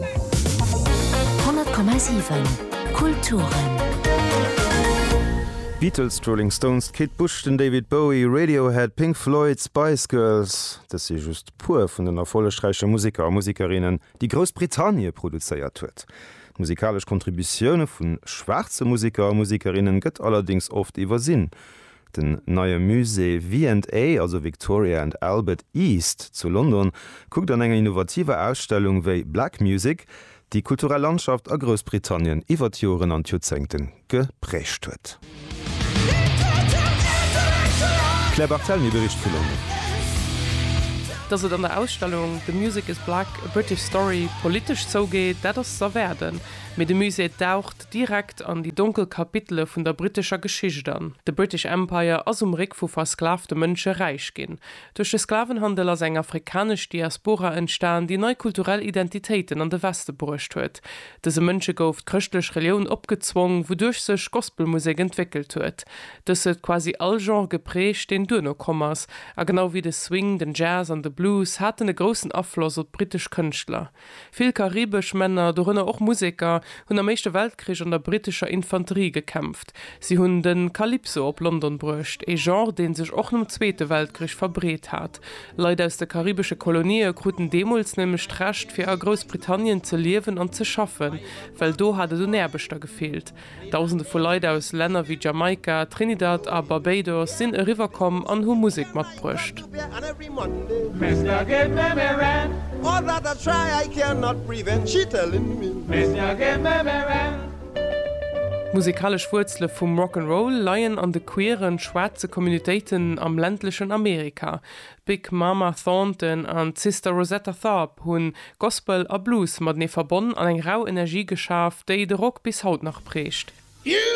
100,7 Kulturen. D'Beatles, d'Rolling Stones, d'Kate Bush, den David Bowie, Radiohead, Pink Floyd, d'Spice Girls, dës si just puer vun den erfollegräiche Museker a Musikerinnen, déi Groussbritannie produzéiert huet. D'musikalesch Kontributioune vu schwaarze Museker a Musikerinnen gëtt allerdéngs oft iwwersinn. Den neie Musée V and A, also Victoria and Albert East, zu London kuckt an enger innovativer Ausstellung, wéi Black Music déi kulturell Landschaft a Groussbritannien iwwer d'Joren an d'Joerzéngte geprägt huet. D'Claire Barthelemy bericht vu London. Datt et an der Ausstellung The Music is Black, A British Story politesch zougeet, dat ass z'erwaarden, mee de Musée daucht direkt an déi donkel Kapitele vun der brittescher Geschicht an. De British Empire ass um Réck vu versklavte Mënsche räich ginn. Duerch de Sklavenhandel ass eng afrikanesch Diaspora entstan, déi nei kulturell Identitéiten an de Weste bruecht huet. Dëse Mënsche gouf d'chrëschtlech Relioun opgezwong, wouduerch sech Gospelmusek entwéckelt huet. Dës huet quasi all Genre geprägt, deen duerno komm ass, a genau wéi de Swing, den Jazz an de Blues haten e groussen Afloss op d'brittesch Kënschtler. Vill karibesch Männer, dorënner och Museker, hunn am Éischte Weltkrich an der brittescher Infanterie gekämpft. Si hunn de Calypso op London bruecht, ee Genre, dee sech och nom Zweete Weltkrich verbreet hat. Leit aus de karibesche Kolonië kruten deemools nämlech d'Recht, fir a Groussbritannien ze liewen an ze schaffen, well do hat et un Aarbechter gefeelt. Dausende vu Leit aus Länner wéi Jamaika, Trinidad a Barbados sinn eriwwer komm an hu Musek matbruecht. D'musekalesch Wuerzele vum Rock 'n' Roll leien an de queeren, schwaarze Communitéiten am ländlechen Amerika. D'Big Mama Thornton an d'Sister Rosetta Tharpe hunn Gospel a Blues matenee verbonn an eng rau Energie geschaf, déi de Rock bis haut nach prägt.